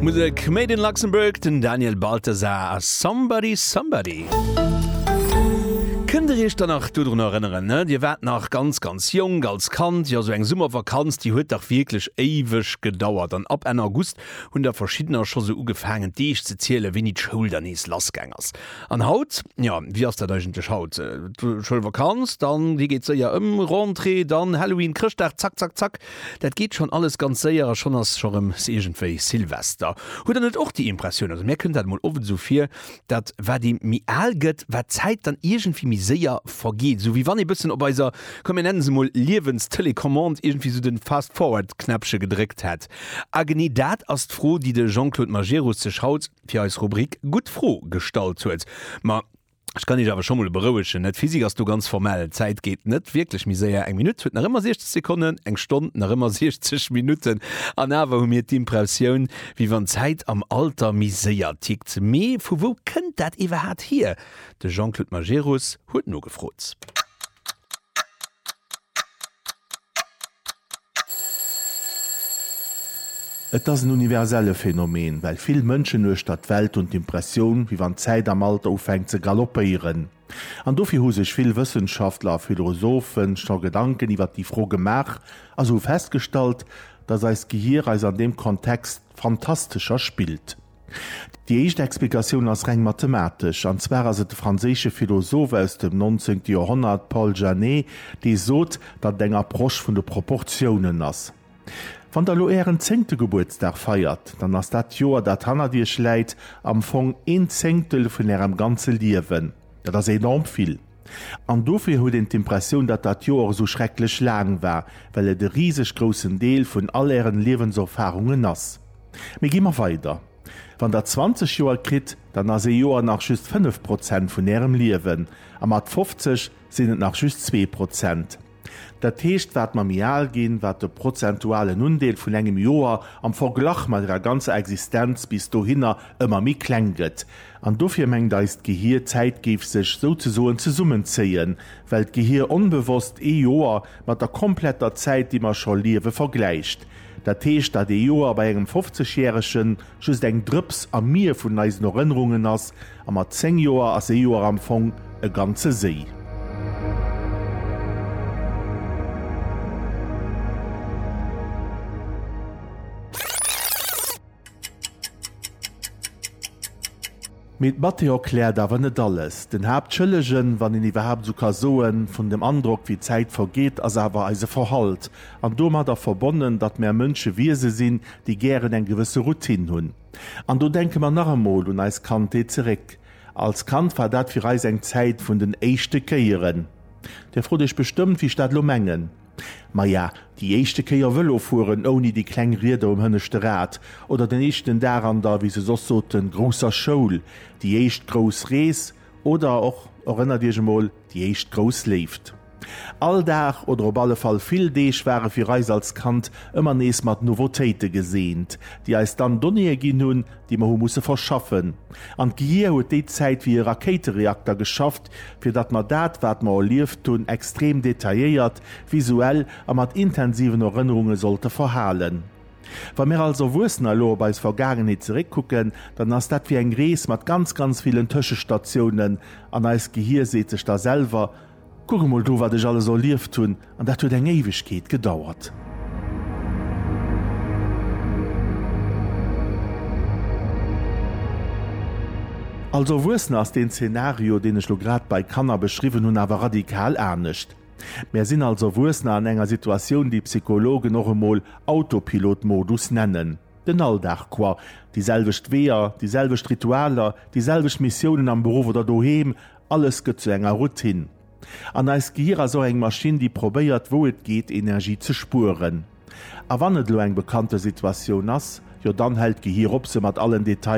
Musek made in Luxembourg, den Daniel Balthasar a Somebody Somebody. Kënnt der Iech da nach dodrun erënneren? Dir waart nach ganz, ganz jonk als Kand. Jo, esou eng Summervakanz, déi huet dach wierklech éiweg gedauert. An ab Enn August hunn da verschiddener scho sou ugefaangen, d'Deeg ze zielen, wéini d'Schoul dann nees lassgaang ass. An haut? Jo, wéi ass dat eigentlech haut? Schoulvakanz, dann, wéi geet séier ëm, Rentrée, dann Halloween, Chrëschtdag, zack, zack, zack. Dat geet schonn alles ganz séier a schonn ass scho rëm iergendwéi Silvester. Hutt der net och déi Impressioun, also mär kënnt dat emol oft esou vir, datt wat ee méi al gëtt, wat d'Zäit dann iergendwéi méi séier vergeet, esou wéi wann ee bëssen op eiser, komm mir nennen se mol Liewens-Télécommande iergendwéi esou de Fast-Forward-Knäppche gedréckt hätt? A genee dat ass d'Fro, déi de Jean-Claude Majerus sech haut fir eis Rubrik Gutt Fro gestallt huet. Ma Ech kann Iech awer scho mol berouegen, net? Physik ass do ganz formell, d'Zäit geet net wierklech méi séier. Eng Minutt huet nach ëmmer 60 Sekonnen, eng Stonn nach ëmmer 60 Minutten. An awer hu mir d'Impressioun, wéi wann d'Zäit am Alter méi séier tickt. Mee vu wou kënnt dat iwwerhaat hier? De Jean-Claude Majerus huet nogefrot. Et ass en universelle Phänomen, well vill Mënschen uechtert d'Welt hunn d'Impressioun, wéi wann d'Zäit am Alter ufänkt ze galoppéieren. An dofir hu sech vill Wëssenschaftler a Philosophe scho Gedanken iwwert déi Fro gemaach a se hu festgestallt, datt eist Gehier eis an deem Kontext, Fantastescher spillt. Déi éischt Explikatioun ass reng mathematesch, an zwar ass et de franséische Philosoph aus dem nonzéngte Joerhonnert Paul Janet, dee sot, datt et eng Approche vun de Proportiounen ass. Wann der elo ären zéngte Gebuertsdag feiert, dann ass dat Joer, dat hannert iech läit, am Fong een Zéngtel vun ärem ganze Liewen. Dat ass enorm vill. An dofir huet een d'Impressioun, datt dat Joer esou schrecklech laang war, well et e riseg groussen Deel vun all Ären Liewenserfarungen ass. Mee gi mer weider, Wann Der 20 Joer kritt, dann ass ee Joer nach just 5 Prozent vun Ärem Liewen, a mat 50 sinn et nach just zwee Prozent. Dat heescht, wat mer méi al ginn, wat de prozentualen Undeel vun engem Joer am Verglach mat ärer ganzer Existenz bis dohinner ëmmer méi kleng gëtt. An dofir mengt eist Gehier, d'Zäit géif sech souzesoen zesummenzéien, well d'Gehier onbewosst ee Joer mat der kompletter Zäit, déi mer scho liewe, vergläicht. Dat heescht, datt ee Joer bei engem 50 Järegen just eng Drëps am Mier vun eisen Erënnerungen ass, a mat 10 Joer ass ee Joer am Fong e ganze Séi. Mee d'Mathé erkläert awer net alles. Den Haaptschëllegen, wann een iwwerhaapt esou ka soen, vun dem Androck, wéi d'Zäit vergeet, ass awer eise Verhalt. An domadder verbonnen, datt mär Mënsche Wiese sinn, déi gären eng gewësse Routine hunn. An do denke mer nach emol un eis Kandheet zeréck. Als Kand war dat fir eis eng Zäit vun den éischte Kéieren. Dir frot iech bestëmmt, wéi ech dat elo mengen. Maja, déi éischte Kéier Vëlo fueren ouni déi kleng Rieder um hënneschte Rad, oder den éischten Dag an der, wéi se soss soten, grousser Schoul, déi éischt grouss Rees, oder och, erënnert Iech emol, déi éischt grouss Léift. All Dag, oder op alle Fall vill Deeg, ware fir eis als Kand ëmmer nees mat Nouveautéite geseent, déi eis dann Donnéeë ginn hunn, déi mer hu musse verschaffen, an d'Gehir huet déi Zäit wéi e Rakéitereakter geschafft, fir datt mer dat, wat mer erlieft hunn, extrem detailléiert, visuell a mat intensiven Erënnerunge sollte verhalen. Wa mir als Erwuessener elo op eis Vergaangenheet zeréckkucken, dann ass dat wéi eng Rees mat ganz, ganz villen Tëschestatiounen, an eist Gehir seet sech da selwer, Kuck emol do, wat ech alles erlieft hunn, an dat huet eng Éiwegkeet gedauert. Als Erwuessener ass deen Zenario, deen ech lo grad bei Kanner beschriwwen hunn, awer radikal anescht. Mär sinn als Erwuessener an enger Situatioun, déi Psychologen och emol Autopilot-Modus nennen. Den Alldag quoi, déi selwecht Weeër, déi selwecht Ritualer, déi selwecht Missiounen am Beruff oder doheem, Alles gëtt zu enger Routine. An eist Gehir ass och eng Maschinn, déi probéiert, wou et geet, Energie ze spueren. A wann et elo eng bekannte Situatioun ass, jo dann hält d'Gehir op, se mat allen Detailler.